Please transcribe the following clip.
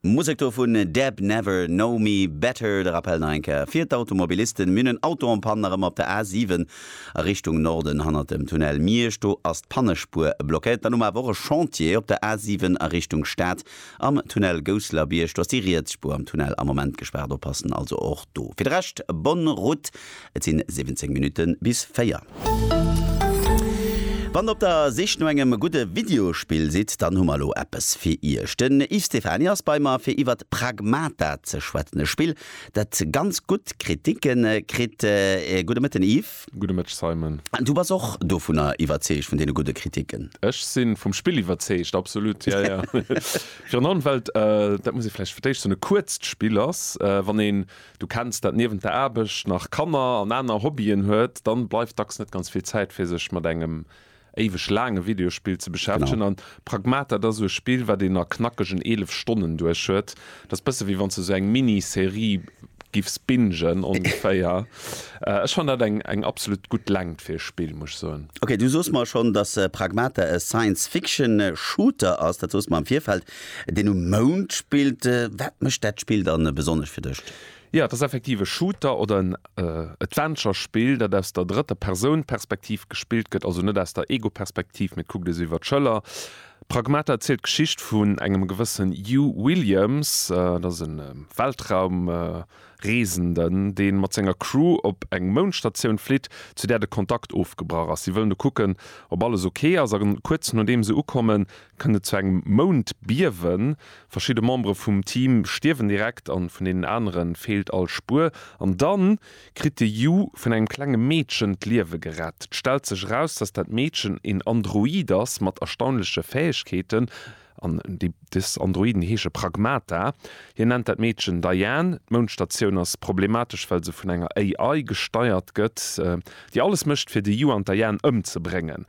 Musek dovun Deb Never Know Me Better. De Rappel nach eng Kéier fir d'Automobilisten, Mir hunn en Auto en Panne erëm op der A 7 a Richtung Norden hannert dem Tunnel Miersch. Do ass d'Pannespuer blockéiert. Dann hu mer awer och e Chantier op der A 7 a Richtung Stad am Tunnel Gousselerbierg. Do ass déi riets Spuer am Tunnel am Moment gespaart. Oppassen also och do. Fir de Rescht, Bonne Route. Et sinn 17 Minutten bis 4. Wann der op der Sich no engem gudde Videospill sidd, dann hu mer elo eppes fir iech. Den Yves Stephany ass bei mer fir iwwert Pragmata ze schwätzen, e Spill dat ganz gutt Kriticke kritt. Gudde Mëtten Yves. Gudde Mëtteg Simon. Du bass och dovunner iwwerzeegt, vun deene gudde Kriticken? Ech si vum Spill iwwerzeegt, absolut, ja ja. Virun allem well et, dat muss ee vläicht fir d'éischt soen, e kuerzt Spill ass. Wann een Du kenns dat, niewent der Aarbecht nach Kanner an aner Hobbyen huet, dann bleift dacks net ganz vill Zäit fir sech mat engem éiweg laange Videospill ze beschäftegen an Pragmata dat ass esou e Spill wat een a knackegen 11 Stonnen duerch huet. Dat ass bësse wéi wanns de esou eng Mini-Serie giffs bingen ongeféier. Ech fannen dat eng eng absolut gutt Längt fir e Spill muss ech soen. Ok, du soos mer schonn dass Pragmata e Science-Fiction Shooter ass, dat soos mer am Virfeld. Deen um Mound spillt, wat mécht dat Spill dann besonnesch fir dech? Jo, et ass effektiv e Shooter oder en Adventure-Spill, dat aus der drëtter Persoun Perspektiv gespillt gëtt, also net aus der Ego-Perspektiv, mee et kuckt ee sou iwwer d'Schëller. Pragmata erzielt d'Geschicht vun engem gewëssen Hugh Williams, dat ass e Weltraumreesenden, dee mat senger Crew op eng Moundstatioun flitt, zu där de Kontakt ofgebrach ass. Si wëllen do kucken, ob alles ok ass, a kuerz nodeem se ukommen, kënnt et zu engem Moundbiewen. Verschidde Membere vum Team stierwen direkt an vun deenen anere feelt all Spuer. An da kritt de Yu vun engem klenge Meedchen d'Liewe gerett. Et stellt sech eraus, dass dat Meedchen een Android ass mat erstaunleche Fäegkeeten. An dës Androiden heesche Pragmata. Hien nennt dat Meedchen Diane. D'Moundstatioun ass problematesch, well se vun enger AI gesteiert gëtt, déi alles mécht, fir de Yu an d'Diane ëmzebréngen.